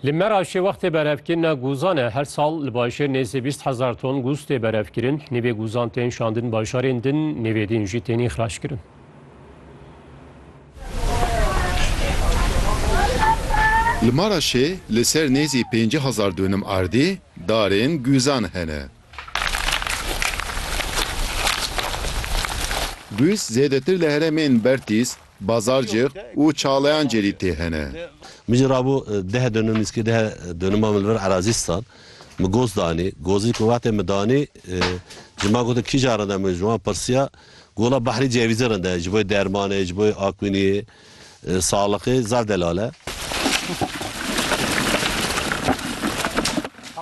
Li Meraşê wextê berevkirina guzan e. Her sal li bajêr nêzî bîst hezar ton guz tê berevkirin. Nîvê guzan tên şandin bajarên din, nîvê din jî tên îxraçkirin. Li Maraşê li ser nêzî pêncî hezar dûnim erdî darên guzan hene. Guz zêdetir li heremên Bertîs, Bazarcix û çalayan cêrî tê hene. Min jî rabû deh dönüm nîzkî deh dönüma min li vir erazî stan. Min goz danî. Gozî ku wextê min danî ji man gotin kîjan rinde min ji wan pirsiya ku wila behrî cevîzê rinde ye ji bo dermanê ji bo akwîniyê saxlixê zaf delal e.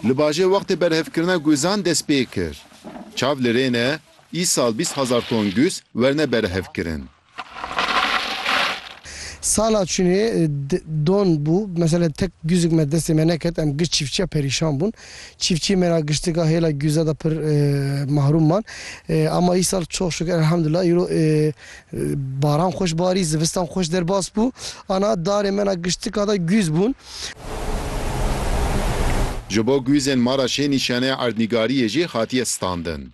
Li bajê wextê berhevkirina guzan dest pê kir. Çav li rê ne îsal bîst hezar ton guz werne berhevkirin. Sala çûnê don bû. Mesela tek gûzik me destê me neket. Em giş çîfçiya perîşan bûn. Çîfçiyê me ra giştika hêla gûze de pir mahrûm man. Ama îsal çox şukur elhamdulillah îro baran xweş barî, zivistan xweş derbas bû. Ana darê me ra giştika de gûz bûn. Ji bo gûzên me ra şê nîşanê erdnîgariyê jî hatiye standin.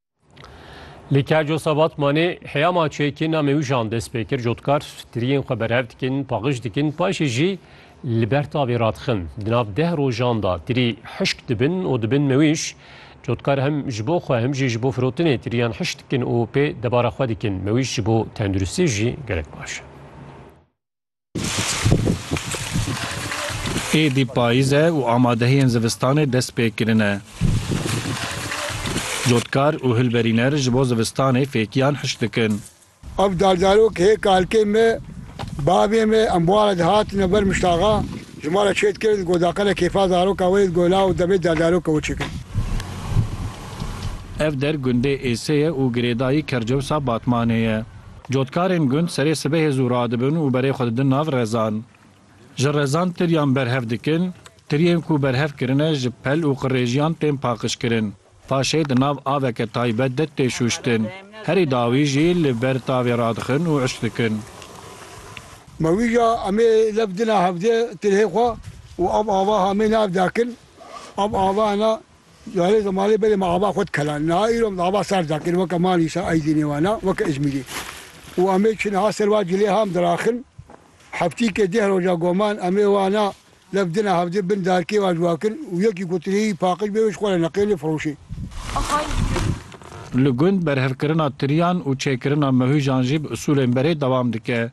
Li Kerco Sabatmanê heya maçeyekê namê wî Jan dest pê kir cotkar tiriyên xwe berhev dikin, paxij dikin, paşê jî li ber tavê radixin. Di nav deh rojan da tirî hişk dibin û dibin mewîş. Cotkar hem ji bo xwe hem jî ji bo firotinê tiriyan hişk dikin û pê debara xwe dikin. Mewîş ji bo tenduristiyê jî gelek baş e. Êdî payîz e û amadehiyên zivistanê dest pê kirine. Cotkar û hilberîner ji bo zivistanê fêkiyan hiş dikin. Ev dardarok hê kalkên me, bavên me em ware dihatine ber Miştaxa, ji ma re çê dikirin ku daqene kêfa zaroka wê di gola û demê dardaroka wê çêkirin. Ev der gundê Êsê ye û girêdayî Kercewsa Batmanê ye. Cotkarên gund serê sibehê zû radibin û berê xwe didin nav rezan. Ji rezan tiriyan berhev dikin, tiriyên ku berhev kirine ji pel û qirêjiyan tên paqijkirin. Paşê di nav aveke taybet de tê şûştin. Herî dawî jî li ber tavê radixin û uş dikin. Ma wî ya em ê lef dina hevdê tirihê xwe û ev ava hamê nav dakin. Ev ava hene Carê zimanê belê me ava xwe dikela. Niha îro min ava ser dakir weke ma nîşan Aydî nêwana weke Îzmîrî û em ê çin ha ser va cilê ha em diraxin. Heftîkê deh roja goman em ê wana lef dina hevdê bin darkê va cuwakin û yekî ku tirî paqij bê wê ji xwe re neqênê firoşê. Li gund berhevkirina tiriyan û çêkirina mehujan jî bi usulên berê dewam dike.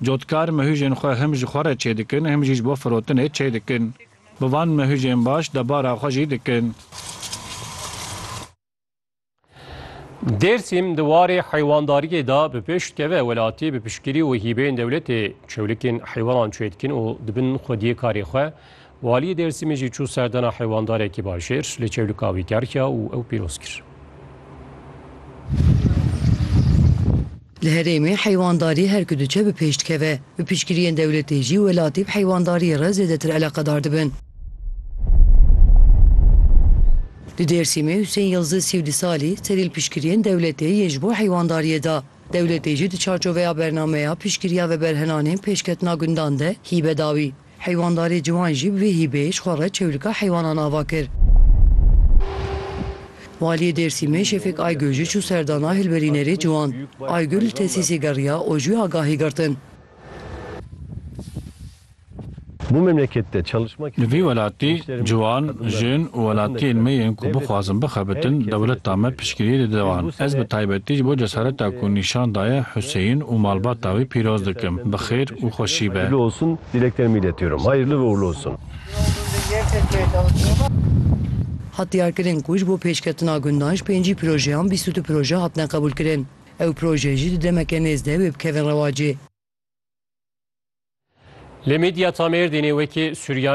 Cotkar mehûjên xwe him ji xwe re çêdikin him jî ji bo firotinê çêdikin. Bi van mehûjên baş debara xwe jî dikin. Dêrsim di warê heywandariyê de bi pêş dikeve, welatî bi piştgirî û hîbeyên dewletê çewlikên heywanan çêdikin û dibin xwediyê karê xwe. Waliyê Dêrsimê jî çû serdana heywandarekî bajêr, li çewlika wî gerhiya û ew pîroz kir. Li herêmê heywandarî her ku diçe bi pêş dikeve. Bi piştgiriyên dewletê jî welatî bi heywandariyê re zêdetir eleqedar dibin. Li Dêrsimê Husên Yildiz sî û du salî serî li piştgiriyên dewletê yên ji bo heywandariyê da. Dewletê jî di çarçoveya bernameya piştgiriya veberhenanên pêşketina gundan de hîbe dawî. Heywandarê ciwan jî bi vê hîbeyê ji xwe re çewlika heywanan ava kir. Waliyê Dêrsîmê Şefik Aygül jî çû serdana hilberînerê ciwan. Aygül li tesîsê geriya û ji wê agahî girtin. Li vê welatê Ciwan, jin û welatiyên me yên ku bixwazin bixebitin dewleta me piştgiriyê didiwan. Ez bi taybetî ji bo cesareta ku nîşan daye Huseyîn û malbata wî pîroz dikim. Bi xêr û xweşî be. Hayırlı olsun dileklerimi iletiyorum. Hayırlı ve uğurlu olsun. Hat diyarkirin ku ji bo pêşketina gundan ji pêncî projeyan bîst û du proje hatine qebûlkirin. Ew proje jî di demeke nêz de wê bikevin rewacê. Lê medya ta Mêrdînê wekî Suryanî.